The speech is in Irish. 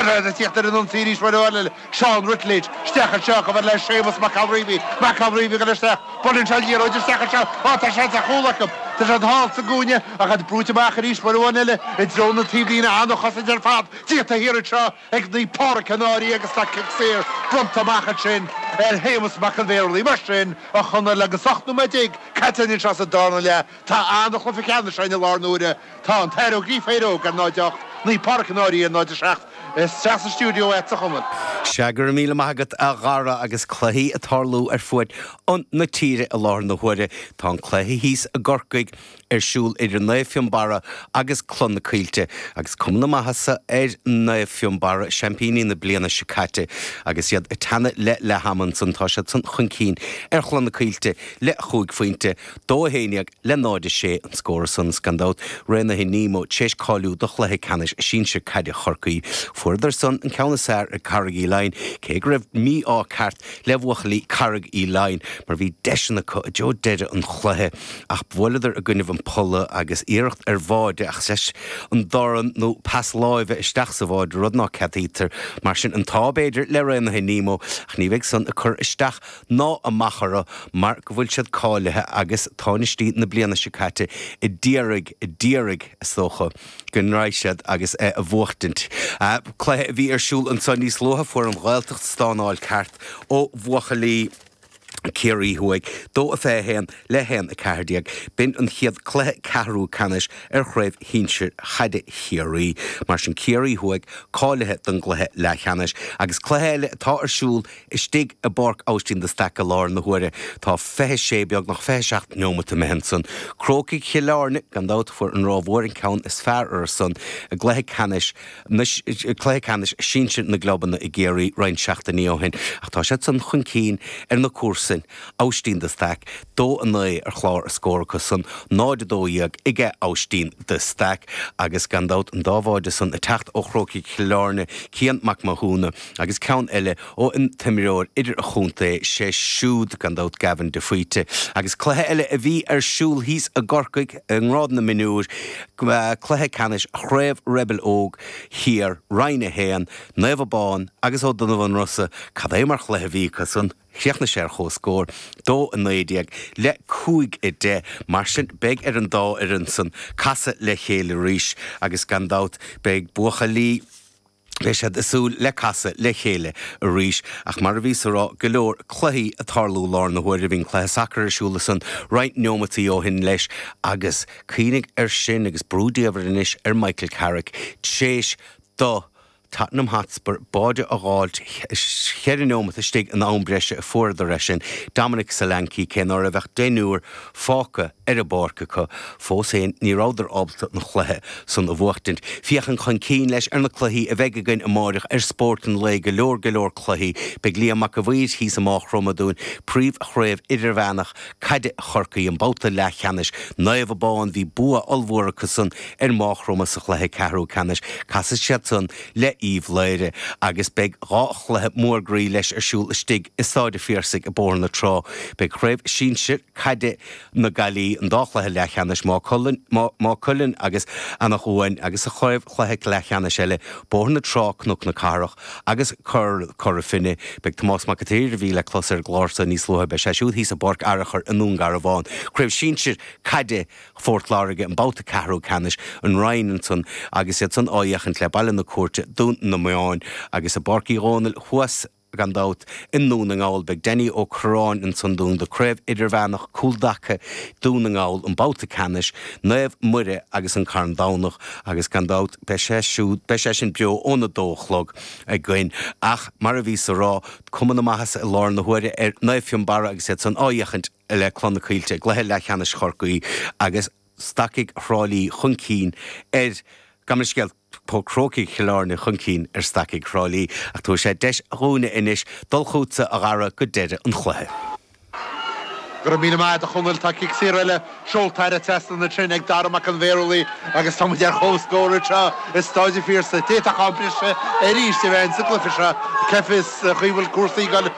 Tíocht ar an ionsaí arís uair amháin eile Seán Ruttledge isteach anseo chomh fada le Séamus Mac Calreavy. Mac Calreavy ag goil isteach. Buaileann sé an liathróid isteach anseo. Á tá seans ar chúl acu. Tá siad thall sa gcúinne ach iad brúite amach arís uair amháin eile i dtreo na taobhlíne. An-chosaint ar fad déanta thiar anseo ag Naomh Pádraic an Fhairche agus tá cic saor bronnta amach ansin ar Shéamus Mac an Mhaorlaigh. Mar sin, a Chonaill, agus 18 nóiméad caite anseo sa darna leath, Tá an chluiche ceannais againn i láthair na huaire. Tá an tAthair Ó Gríofa Éire Óg ar 0 8, Naomh Páraic an Fhairche ar 0 7 is teacht sa stiúideo é sa chumann. Sea, go raibh míle maith agat a Dhara agus cluichí ag tarlú ar fuaid an na tíre i láthair na huaire. Tá an cluiche thíos i gCorcaigh ar siúl idir Naomh Fionnbarra agus Cloich na Coillte agus cuma na maitheasa ar Naomh Fionnbarra, seaimpíní na bliana seo caite. Agus iad ag teannadh le leath-am ansan tá siad san chun cinn ar Chloich na Coillte le chúig phointe, Dó a haon dhéag le náid a sé an scór ansan is gan dabht Raonaithe Nemo tar éis cáiliú do chluiche ceannais sinsir caide Chorcaí. Fuaireadar san an ceann is fhearr ar Carraig Uí Leighin cé go raibh mí-ádh ceart le bhuachaillí Carraig Uí Leighin mar bhí deiseanna acu i dtreo deireadh an chluiche ach bhuaileadar i gcoinnibh an polla agus iarracht ar bháide ach leis an dorn nó pas láimhe isteach sa bháide rud ná ceadaítear. Mar sin an t-ádh b'fhéidir le Raonaithe Nemo ach ní bheidh san ag cur isteach ná amach orthu mar go bhfuil siad cáilithe agus tánaistí na bliana seo caite a d'iarraidh, a d'iarraidh, is dócha, go ndraoi siad agus é a bhuachtaint. Cluiche a bhí ar siúl anseo níos luaithe, fuair an Ghaeltacht stánáil ceart ó bhuachaillí Chiarraí Thuaidh, 2-21 le 1-14. B'in an chéad cluiche ceathrú ceannais ar chraobh shinsir chaide Chiarraí. Mar sin Ciarraí Thuaidh cáilithe don gcluiche leathcheannais agus cluiche eile atá ar siúl Istigh i bPáirc Aibhistín de Staic i láthair na huaire tá fiche sé, beagnach fiche seacht neomata imithe ansan. Crócaigh Chill Airne, gan dabht, fuair an Ráth Mhór an ceann is fearr orthusan i gcluiche ceannais na, cluiche ceannais sinsir na gclubanna i gCiarraí roinnt seachtainí ó shin ach tá siad san chun cinn ar na comharsain, Aibhistín de Staic. Dó a naoi ar chlár a scór acu san, 0 a dó dhéag ag Aibhistín de Staic agus gan dabht an dá bháide san ag teacht ó Chrócaigh Chill Airne, Cian Mac Mathúna, Agus ceann eile ó an t-imreoir idir-chontae, sé siúd gan dabht Gavin de Faoite. Agus cluiche eile a bhí ar siúl thíos i gCorcaigh i ngrád na mionúr, cluiche ceannais Chraobh Rebel Óg Thiar, Roinn 1, Naomh Abán agus Ó Donnabhain Rosa, cad é mar chluiche a bhí acu san. Chríochnaigh sé ar chomhscór, dó a naoi déag le cúig a deich. Mar sin beidh ar an dá fhoireann san casadh le chéile arís agus gan dabht beidh buachaillí. Beidh siad ag súil le casadh le chéile arís. Ach mar a bhíos a rá go leor cluichí ag tarlú lár na huaire. Bhí an cluiche sacair ar siúl ansan roinnt neomataí ó shin leis agus cuimhnigh ar sin agus brú diamhair anois ar Michael Carrick t'réis do Tottenham Hotspur báide a dh'fháilt cheithre neomat istigh in am breise a fuaireadar é sin Dominic Solanke cé ná raibh ach deichniúr fágtha ar an bpáirc acu. Fós féin, ní rabhadar ábalta an chluiche san a bhuachtaint. Féachaint chun cinn, leis, ar na cluichí a bheidh againn amáireach ar Spórt an Lae go leor go leor cluichí. Beidh Liam Mac a Mhaoir thíos i Máigh Chromtha dúinn, Príomh Chraobh Idirmheánach Caide Chorcaí, an babhta leathcheannais Naomh Abán bhí bua ollmhór acu san ar Máigh Chromtha sa chluiche ceathrú ceannais. Casfaidh siad san le Uíbh Laoghaire agus beidh dhá chluiche mór groí leis ar siúl istigh i Stáid a' Phiarsaigh i Bóthar na Trá. Beidh Craobh Sinsir Caide na Gaillimhe, an dá chluiche leathcheannais, Maigh Cuilinn agus Anach Cuain agus sa chraobh chluiche leathcheannais eile, Bóthar na Trá, Cnoc na Cathrach agus Cora Finne. Beidh Tomás Mac a tSaoir a bhí le clos ar an gclár so níos luaithe, beidh sé siúd thíos i bPáirc Fhearchair i nDún Garbhán. Craobh Sinsir Caide Phort Láirge an babhta ceathrú ceannais an Rinn ansan agus iad san á fhéachaint le Baile na Cúirte, Dún na mBan, agus i bPáirc Uí Dhónaill thuas, gan dabht, i nDún na nGall. Beidh Danny Ó Curráin ansan dúinn do Craobh Idirmheánach Cúltaca Dún na nGall an babhta ceannais Naomh Muire agus an Carn Domhnach agus gan dabht beidh sé siúd, beidh sé sin beo óna dó a chlog againn ach mar a bhíos a rá, cuma na maitheasa i lár na huaire ar Naomh Fionnbarra agus iad san á fhéachaint le Clanna Caoilte i gcluiche leathcheannais Chorcaí agus Stacaigh Thrá Lí chun cinn ar. Gabh mo leithscéal, Crócaigh Chill Airne chun cinn ar Stacaigh Thrá Lí ach tabharfaidh sé deis dhúinne anois dul chútsa, a Dhara, go deireadh an chluiche. Go raibh míle maith agat a Chonaill. Tá cic saor eile seolta thar an trasnán ansin ag Dara Mac an Bhéarlaigh agus tá muid ar chomhscór anseo i Stáid an Phiarsaigh. D'fhéadfadh am breise arís a bheith ann sa gcluiche seo. Cá bhfios cén chaoi a bhfuil cúrsaí gan.